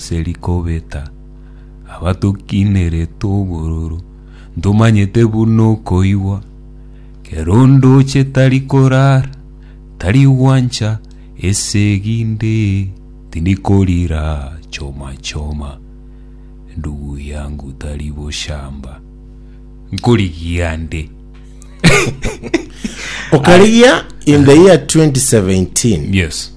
Ase rikobeta, abatokinerete obororo, ntomanyete buna okoigwa, kera onde oche tari korara, tari gwancha, esegi nde, tindi korira, choma choma, ndugu yangu tari boshamba. Nkorigia nde. Okarigia in the year 2017. Yes.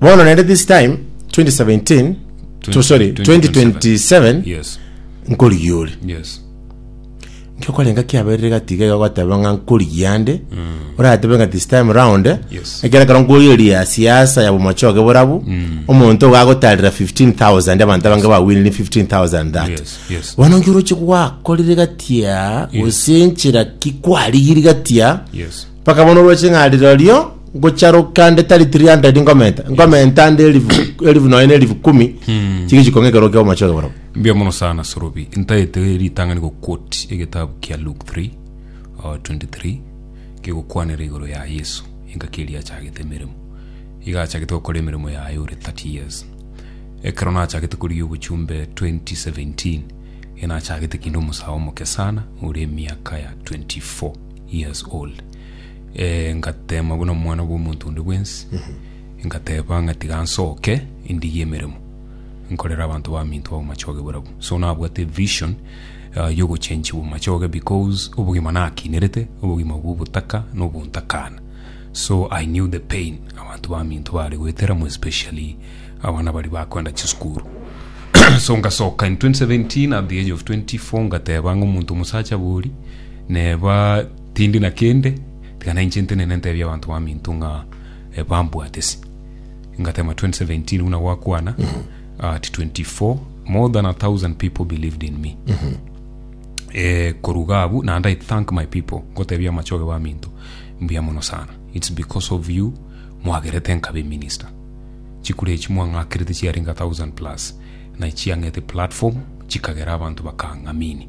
Bono naende this time 2017 to sorry 2027 Yes. nkorigia ore Yes. nkokorenga kiaberire gatiga iga gwateba ng'a nkorigia ande oratebe ng'a this time round eh, Yes. ekero ekero nkoyeria siasa ya bomochoge borabu omonto gagotarera 15000 abanto abange bawinire 15000 that Yes, yes. bono nkiroche gwakorire gatia gosenchera ki kwarigiri gatia Yes. Bakabona orwe ching'ari rorio ngocharoka nde tari 300 ngomenta ngomenta nde elifu elifu nonya na elifu kumi chigichi kong'ekerwa kia omochoge barabo Mbia mono sana Sorobi. Ntaete ritang'ani go quote egetabu kia Luke 3 uh, 23 kegokwanera igoro ya Yesu engaki eria achagete emeremo. Iga achagete gokora emeremo yaye ore 30 years. Ekero nachagete korigia obochumbe 2017 inachagete kinde omosae omoke sana ore emiaka ya 24. years old eh, ngatema buna omwana bw'omonto onde bwensi ngateba ng'a tiga nsoke endige emeremo nkorera abanto baminto babo machoge borabu so nabwate vision uh, yogochenchiwa machoge because obogima nakinerete obogima bw'obotaka nobontakana so i knew the pain abanto baminto bare goeteramo especially abana bari bakwenda chisukuru so ngasoka in 2017 at the age of 24 ngateba ng'omonto omosacha bori Neba tindi na kende, tiga na inche ntenene ntebie abanto baminto ng'a eh, bambwate ase. Ngatema 2017 buna gwakwana at 24 more than a thousand people believed in me eh, koruga abu naende i thank my people ngotebia amachoge baminto mbuya mono sana its because of you mwagerete nkabe minister chikura echi mwang'akerete chiarenge a thousand plus na chiang'ete platform chikagera abanto bakang'amini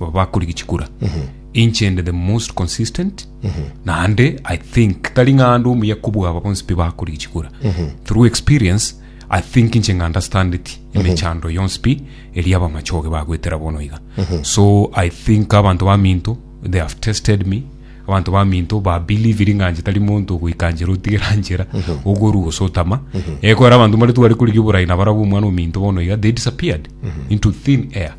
Aba bakorigia chikura. Inche inde the most consistent. Naende I think tari ng'ande omuya kobua aba bonsi pi bakorigia chikura. Through experience, I think inche ng'understandeti emechando yonsi pi eria abamachoge bagwetera bono iga. So I think abanto baminto they have tested me Abanto baminto ba believiri ng'a nche tari monto ogoikanchera otigera nchera ogorwa gose otama ekero abanto mbare tware korigia oborai na barabwo omwana ominto bono iga they disappeared into thin air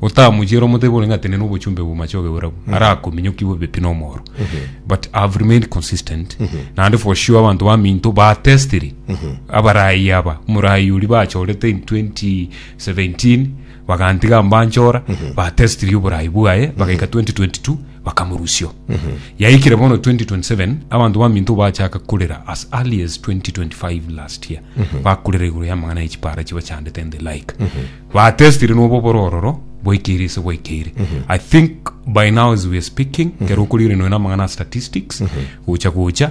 otamochiera omotebe ore ng'a tenena obochumbe bwa machoge borabu arakominyokigwe bepi na omoro but I have remained consistent naende for sure abanto baminto ba testiri abarai aba omorai oria bachorete in 2017 bagantiga mbanchora ba testiri oborai bwaye bagaika 2022 bakamorusio. Yaikire bono 2027 abanto baminto bachaka kurera as early as 2025 last year bakurera igoro y'amang'ana ya chipara chibachandete and the like batestire nobo borororo bwaikeire ise bwaikeire i think by now as we are speaking kero okorire noyo namang'ana ya statistics gocha gocha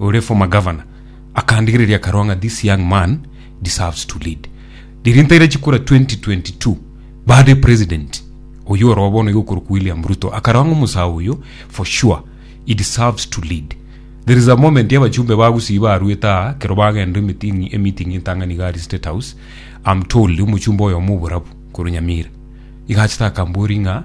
ore former governor akandigereria akarwa ng'a this young man deserves to lead riria ntaire chikura 2022 bade president oyo oroo bono iga okorokwa William Ruto akarwa ng'a omosae oyo for sure he deserves to lead there is a moment abachumbe ba Gusii barwete aa kero bagenda emeeting emeeting entang'ani iga aria state house am told omochumbe oyomo oborabu korwa Nyamira iga achete akamboria ng'a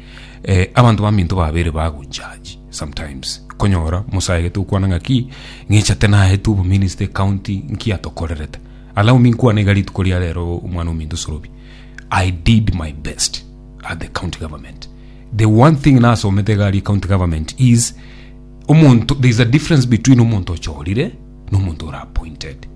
eh, abanto baminto babere bagojaji sometimes konyora musayagete gokwana ng'aki ng'echate naete obominista ecounty nki atokorerete allow me nkwane iga rituko ria rero omwana ominto sorobi i did my best at the county government the one thing nasomete iga aria county government is omonto there is a difference between omonto ochorire na omonto ora appointed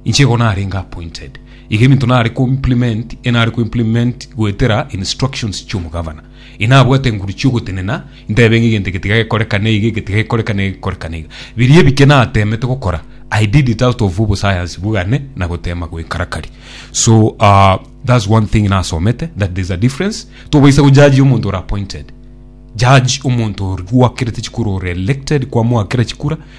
Inche igo narenge appointed, iga ebinto nare ko implement e nare ko implement goetera instructions chia omogavana. Inabwate enguru chia ogotenena, intebe ng'a egento eke tiga gekorekane iga, eke tiga gekorekane iga, eke gekorekane iga. Biria ebike nateemete gokora, I did it out of obosayansi bogane na goteema goikarakari. So ah, that's one thing nasomete, that there's a difference. Tobaisa gojaji omonto ore appointed. Judge omonto ore gwakerete chikura, ore elected, kwamoakera chikura,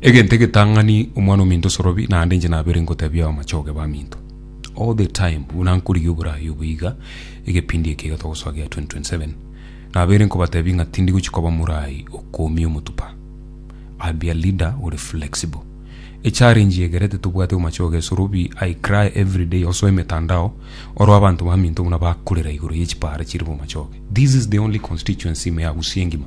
Egento egetang'ani omwana ominto osorobi, naende inche nabere ngotebia abamachoge baminto all the time buna nkorigia oboraai obo iga egepindi eke iga togosoa gia 2027 nabere nkobatebia ng'a tindi gochia koba moraai okoomia omotuba I'll be a leader ore flexible. Echallenge eyegerete tobwate omochoge esorobi I cry everyday osoa emetandao oroo abanto baminto buna bakorera igoro ye chipaara chire bomachoge this is the only constituency ime ya Gusii engima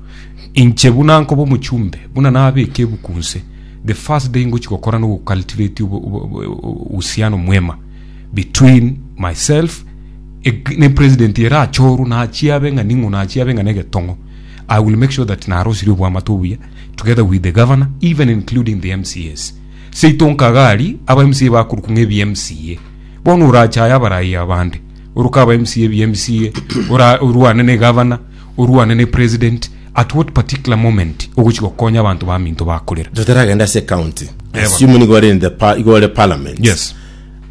Inche buna nkoba omochumbe, buna nabeke ebuku nse, the first day ngochi gokora no gucultivate obo- obo- obo- obo- uhusiano mwema between myself eg- ne president ere achoru nachia abe ng'a ning'o nachia abe ng'a negetong'o i will make sure that narosirie obwamate obuya together with the governor even including the mcs seito nkagari aba mca bakorukwa ng'ebi mca bono orachaye abarai abande oruka aba mca ebi mca ora- orwane ne governor Orwane ne president at what particular moment ogochi gokonya abanto baminto bakorera. Totaragenda ase ecounty, Yebo. assume nigo ore in the pa, igo ore parliament. Yes.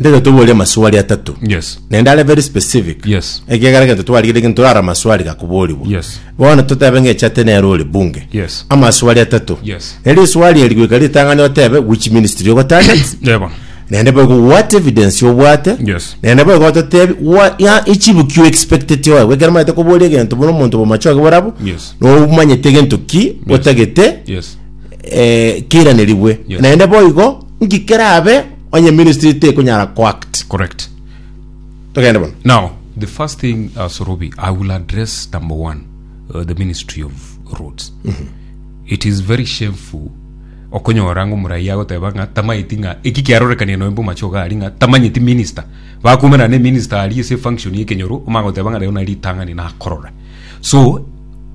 Ndete toborie amaswali atato. Yes. Naende are very specific. Yes. Ekiagera egento twarigire gento ara amaswali gakoborigwa. Yes. Bono totebe ng'eche ate nere ore bunge. Yes. Amaswali atato. Yes. Nere eswali eri goika ritang'ani otebe which ministry ogotarget. Yebo. Naende boigo what evidence obwate. Yes. Naende boigo ototebi wa ya echibuki you expected oe. Wekero maete koboria egento buna omonto bomachoge borabu. Yes. No manyete egento ki otagete Yes. eh, keiraneriwe Yes. naende boigo ngikerabe onye ministry tekonyara coact Correct. togende bono Now, the first thing, uh, Sorobi, I will address number one, uh, the Ministry of Roads. It is very shameful Okonyora ng'a omoraia agoteba ng'a tamaeti ng'a eki kiarorekania noe mboma choga aria ng'a tamanyeti minister. Bakoumera ne minister aria ase function ye kenyoro omanye goteba ng'a rero nari ritang'ani nakorora. So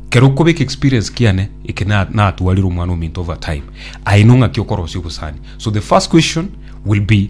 kero okobeka experience kiane eke na natwarire omwana ominto over time. Aye no ng'aki okorosia obosani. So the first question will be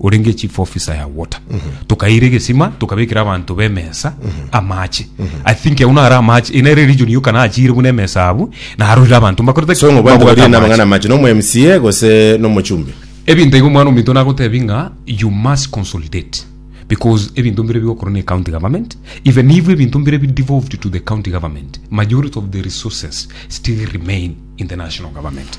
orenge chief officer ya water tokaira egesima tokabekera abanto b'emesa amache i think agwo naro amache eye nere region yoka nachire buna emesa abwo narorire abanto mbakorete so ng'o banto babwate baria amache. namang'ana mache nomo mca gose nomochumbi ebinto igo omwana ominto nagotebi ng'a you must consolidate because ebinto mbire bigokorwa ne county government even if ebinto mbire bi devolved to the county government majority of the resources still remain in the national government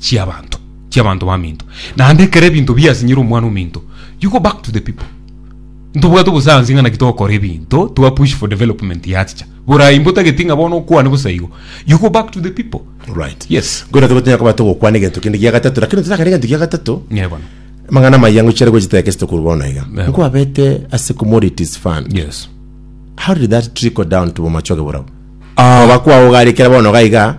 chiabanto chiabanto baminto naende ekero ebinto biasinyire omwana ominto you go back to the people ntobwate obosayansi ng'a naki togokora ebinto twa push for development yachicha borai mbotageti ng'a bono okwane bosa igo you go back to the people Alright. yes Ngoira togotinya koba togokwana egento kende gia gatato lakini totakana egento gia gatato ng'e bono amang'ana amaya ngochire gochita eke sitokoru bono iga Yeah. nkwabete ase commodities fund yes how did that trickle down to bomachoge borao Ah. oba kwago gari kera bono gaiga